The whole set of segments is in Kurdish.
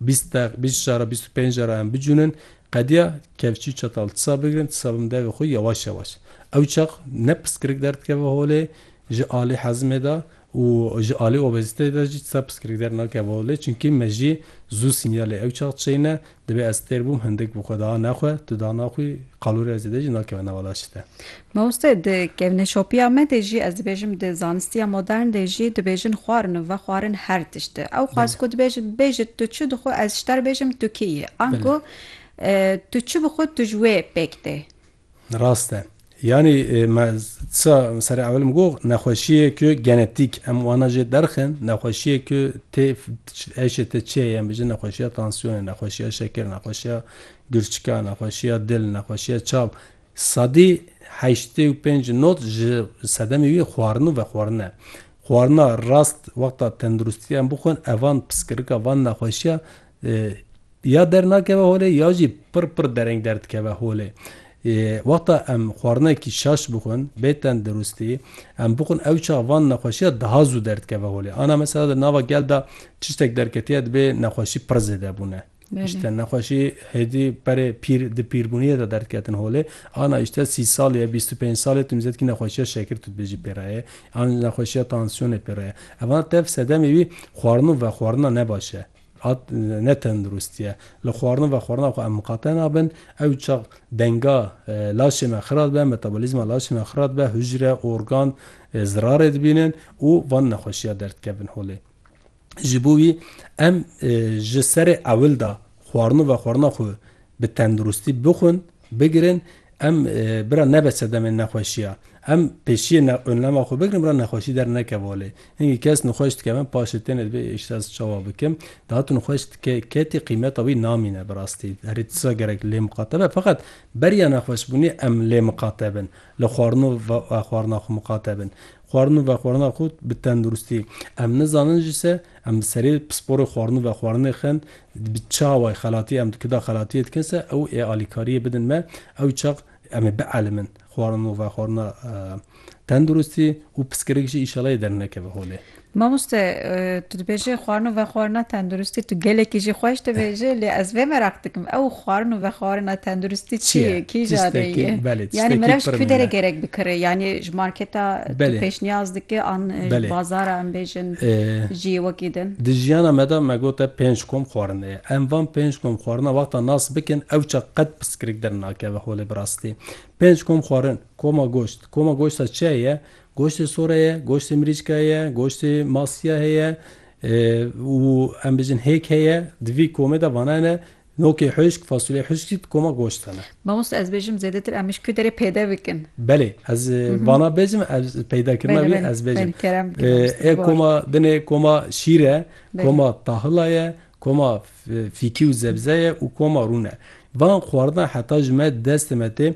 Bîst deq, bîst jara, bîst û pênc jara em bicûnin, qediya kevçî û çetal tisa bigirin, tisa bin devê xwe yewaş yewaş. Ew çax ne piskirik derdikeve holê ji alî hezimê de û ji alî obezîteyê de jî tisa piskirik dernakeve holê çimkî me jî zû sînyalê ew çax çêyine, divê ez têr bûm hindik bi xwe da ne xwe, tu dana xwî, qalûrê ez ê de jî nakeve nava laşê te. Mamoste di kevneşopiya me de jî, ez dibêjim di zanistiya modern de jî dibêjin xwarin û vexwarin her tişt e. Ew xwest ku dibêjin bêje tu çi dixwe ez ji te re bêjim tu kî yî. Ango tu çi bixwe tu ji wê pêk tê. Rast e. Yanî me tisa serê ewil got nexweşiyê ku genetîk em wana jê derxin nexweşiyê ku tê êşê te çi ye yên bijin nexweşiya tansiyonê, nexweşiya şekir, nexweşiya girçika, nexweşiya dil, nexweşiya çav Sadî heştê û pênc not ji sedemê wî xwarin û vexwarin e. Xwarina rast wexta tenduristî em bixwin ev an piskirika van nexweşiya ya dernakeve holê ya jî pir pir dereng derdikeve holê. Wexta em xwarinekî şaş bixwin bê tenduristî em bixwin ew çax van nexweşiya daha zû derdikeve holê. Ana mesela di nava gel de tiştek derketiye dibê nexweşî pir zêde bûne. Îşte nexweşî hêdî berê pîr di pîrbûniyê de derdiketin holê. Ana îşte sî salî ye, bîst û pênc salî ye tu mîzetkî nexweşiya şekir tu dibêjî pê re ye an nexweşiya tansiyonê pê re ye. Evana tev sedemê wî xwarin û vexwarina ne baş e. A ne tendirustî ye. Li xwarin û vexwarina xwe em miqate nabin. Ew çax denga laşê me xira dibe, metabolîzma laşê me xira dibe, hucre, organ zirarê dibînin û van nexweşiya derdikevin holê. Ji bo wî em ji serê ewil de xwarin û vexwarina xwe bi tenduristî bixwin, bigirin, em bira nebe sedemên nexweşiya. Em pêşiyê önlema xwe bigirin bira nexweşî dernekeve holê. Hingî kes nixweş dike me paşê têne dibê îşt ez çawa bikim. Daha tu nixweş dike ketî qîmeta wî namîne bi rastî. Herî tisa gerek lê miqate be. Feqet beriya nexweşbûnê em lê miqate bin. Li xwarin û vexwarina xwe miqate bin. xwarin û vexwarina xwe bi tenduristî. Em nizanin jî se em bi serê pisporê xwarin û vexwarinê xin, bi çi awayî xelatî em dikin da xelatiyê dikin se ew ê alîkariyê bidin me, ew çax em ê bielîmin xwarin û vexwarina tenduristî û piskirik jî înşallah yê dernekeve holê. Mamoste Tu dibêjî xwarin û vexwarina tenduristî tu gelekî jî xweş dibêjî lê ez vê meraq dikim ew xwarin û vexwarina tenduristî çi ye kî jadê ye yanî meriv ji ku derê gerek bikire yanî ji marketa tu pêşniyaz dikî an ji bazara em bêjin jî wekî din. Di jiyana me de me gote pênc kom xwarin heye em van pênc kom xwarina wexta nas bikin ew çax qet piskirik dernakeve holê bi rastî pênc kom xwarin koma goşt koma goşta çi ye Goştê sore ye, goştê mirîcke ye, goştê masiye heye û em bijin hêk heye. Di vî komê de vana ne nokê huşk, fasulye huşk jî di koma goşt de ne. Mamoste ez bêjim zêdetir em ji ku derê peyde bikin. Belê ez vana bêjim ez peydekirina wî ez bêjim. Ê koma din ê koma şîr e, koma tahila ye, koma fîkî û zebze ye û koma rûn e. Van xwaridina heta ji me destê me tê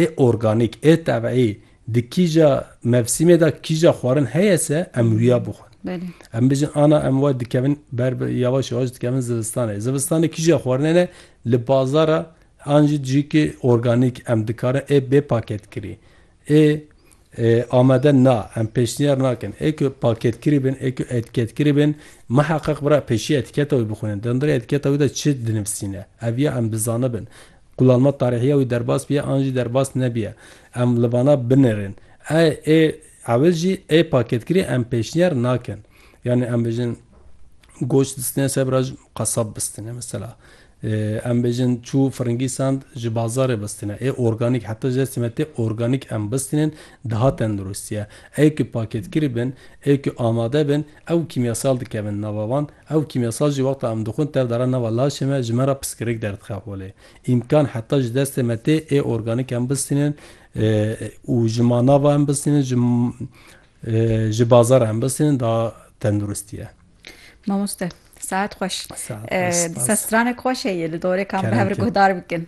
ê organîk, ê tebî Di kîja mevsîmê de kîja xwarin heye se em wiya bixwin. Em bijin ana em wa dikevin ber bi yawaş yawaş dikevin zivistanê. Zivistanê kîja xwarinê ne li bazara an jî cihîkê organîk em dikarin ê bê paketkirî. Ê amade na, em pêşniyar nakin. Ê ku paketkirî bin, ê ku etîketkirî bin, miheqeq bira pêşî etîketa wî bixwînin. Di hundirê etîketa wî de çi dinivîsîne? Ev ya em bizanibin. Kulanma tarîhiya wî derbas biye an jî derbas nebiye, em li vana binêrin. Ey ê ewil jî ê paketkirî em pêşniyar nakin. Yanî em bêjin goş distine ser bira ji qesab bistine mesela. Em bêjin çû firingî sand ji bazarê bistine. Ê organîk heta jê simetê organîk em bistinên diha tenduristiye. Ê ku paketkirî bin, ê ku amade bin ew kîmyasal dikevin nava wan. Ew kîmyasajî wexta em dixwin tev dara nava laşê me ji me re piskirik derdixe holê. Îmkan heta ji destê me tê ê organîk em bistînin û ji manava em bistînin ji ji bazara em bistînin da tenduristî ye. Mamoste saet xweş. Saet xweş spas. Sestiranek xweş heye li dorê kan bi hev re guhdar bikin.